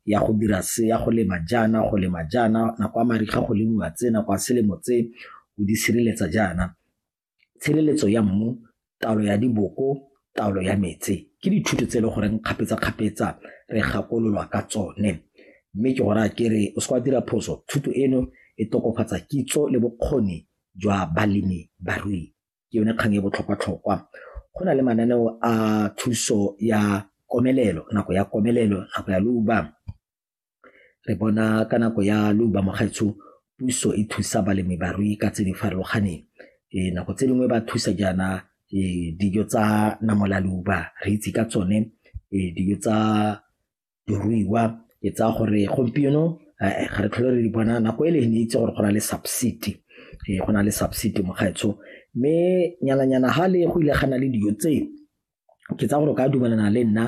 ya go dira se ya go lema jaana go lema jaana nako ya mariga go lemiwa tse nako ya selemo tse o di sireletsa jaana tshireletso ya mmu taolo ya diboko taolo ya metse ke dithuto tse e le goreng kgapetsa-kgapetsa re gakololwa ka tsone mme ke gore a ke re o se kwa dira phoso thuto eno e tokofatsa kitso le bokgoni jwa balemi barui ke yone kgang e botlhokwa-tlhokwa. Go na le mananeo a thuso ya komelelo, nako ya komelelo, nako ya leuba. Re bona ka nako ya leuba mo gaetsho puso e thusa balemi-barui ka tse di farologaneng. Nako tse dingwe ba thusa jaana dijo tsa namolaloba re itse ka tsone dijo tsa. diruiwa ke tsaya gore gompieno eh, ga re tlhole re di bona nako e le ne itse gore go na le subsidy eh, go na le subsidy mokgaetsho mme nyananyana ga le go ile ga na le dijo tseo ke tsaya gore o ka dumelana le nna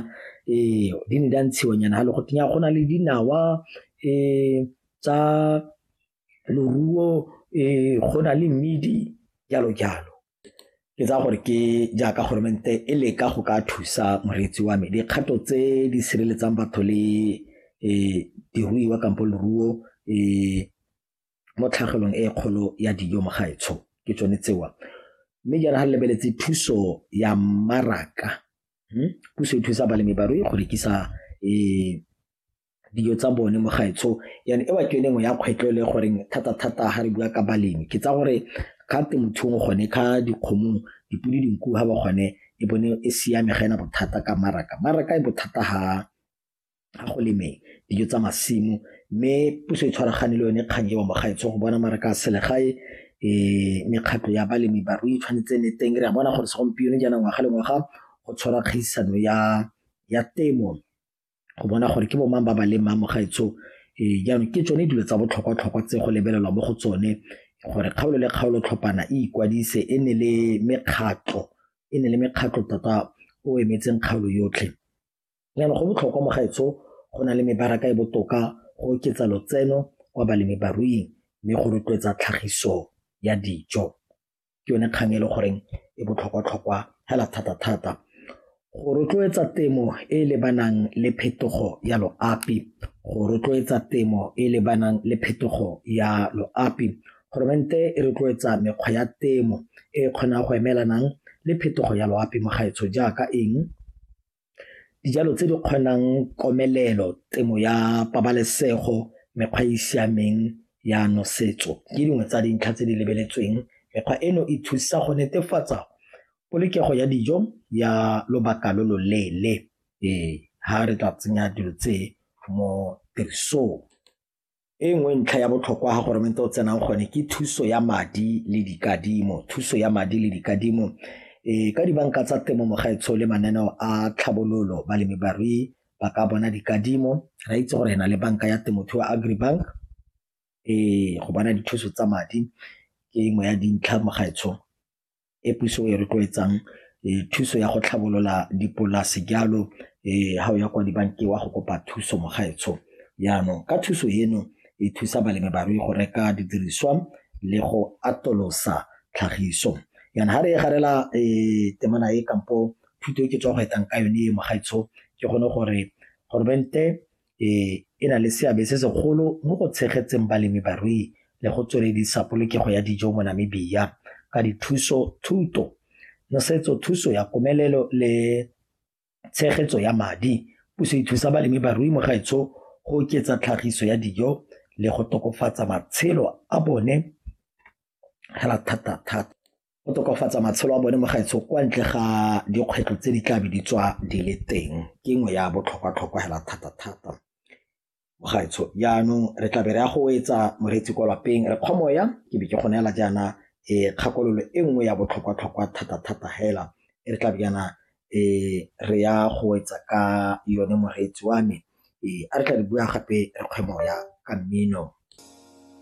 ee di ne di a ntshiwa nyana ga le go tenya go na le dinawa um tsa loruo um go na le mmidi jalo jalo Ke tsaya gore ke jaaka goromente e leka go ka thusa moreetsi wa me dikgato tse di sireletsang batho le um diruiwa kampo leruo um mo tlhagelong e kgolo ya dijo mo gaetsho ke tsone tsewa mme jaana ga lebeletse thuso ya mmaraka hmm? puso e thusa balemi barui go rekisa um dijo tsa bone mo gae so yane e ba ke yone nngwe ya kgwetlho e le goreng thata-thata ga re bua ka balemi ke tsa gore ga temothuong gone ka dikgomong dipodi dinku ga ba gone e bone e siame ga ena bothata ka maraka maraka e bothata ga ga go lemeng dijo tsa masimo mme puso e tshwaragane le yone kgang ewa mo gae so go bona maraka a selegae um mekgatlho ya balemi barui tshwanetse ne teng re a bona gore segompieno jaana ngwaga le ngwaga go tshwara kgaisano ya ya temo go bona gore ke bo mang ba ba leng mamo gaetsho ee jaanong ke tsone dilo tsa botlhokwa-tlhokwa tse go lebelelwa mo go tsone gore kgaolo le kgaolo tlhopana e ikwadise e ne le mekgatlho e ne le mekgatlho tota o emetseng kgaolo yotlhe jaanong go botlhokwa mo gaetsho go na le mebaraka e botoka go oketsa lotseno kwa balemi baruing mme go rotloetsa tlhagiso ya dijo ke yone kgang e le goreng e botlhokwa-tlhokwa hela thata-thata go rotloetsa temo e e lebanang le phetogo ya loapi go rotloetsa temo e e lebanang le phetogo ya loapi goromente e rotloetsa mekgwa ya temo e e kgonang go emelanang le phetogo ya loapi mo gaetsho jaaka eng Dijalo tse di kgonang komelelo, temo ya pabalesego, mekgwa e e siameng ya nosetso ke dingwe tsa dintlha tse di lebeletsweng. Mekgwa eno e thusa go netefatsa polokego ya dijo ya lobaka lo lo leele fa re tla tsenya dilo tse mo tirisong. E nngwe ntlha ya botlhokwa ga goromente o tsenang gone ke thuso ya madi le dikadimo thuso ya madi le dikadimo e ka dibanka tsa temo mogaetsho le mananeo a tlhabololo balemi barui ba ka bona dikadimo ra itse gore na le banka ya temothuo agribank e go bona dithuso tsa madi ke nngwe ya dintlha mogaetsho e puso e rotloetsang thuso ya go tlhabolola dipolase jalo ga o ya kwa dibankeng wa go kopa thuso mo gaetsho jaanong ka thuso eno e thusa balemi barui go reka didiriswa le go atolosa tlhagiso yana ga re e garela temana e kampo thuto e ke tswa go etang ka yone e mo gaetsho ke gone gore goromente e e na le seabe se segolo mo go tshegetseng balemi barui le go tsweledisa polokego ya dijo mo Namibia ka dithuso thuto nosetso thuso ya komelelo le tshegetso ya madi puso e thusa balemi barui mo gaetsho go oketsa tlhagiso ya dijo le go tokafatsa matshelo a bone hela thata thata. go tokafatsa matshelo a bone mo gaetsho kwa ntle ga dikgwetlho tse di tla be di tswa di le teng ke nngwe ya botlhokwa-tlhokwa hela thata-thata mo gaetsho jaanong re tla be re ya go etsa moreetsi kwa lapeng re kgomoya ke be ke go neela jaana e kgakololo e nngwe ya botlhokwa-tlhokwa thata-thata hela e re tla be jaana e re ya go etsa ka yone moreetsi wa me e a re tla re bua gape re kgwemoya ka mmino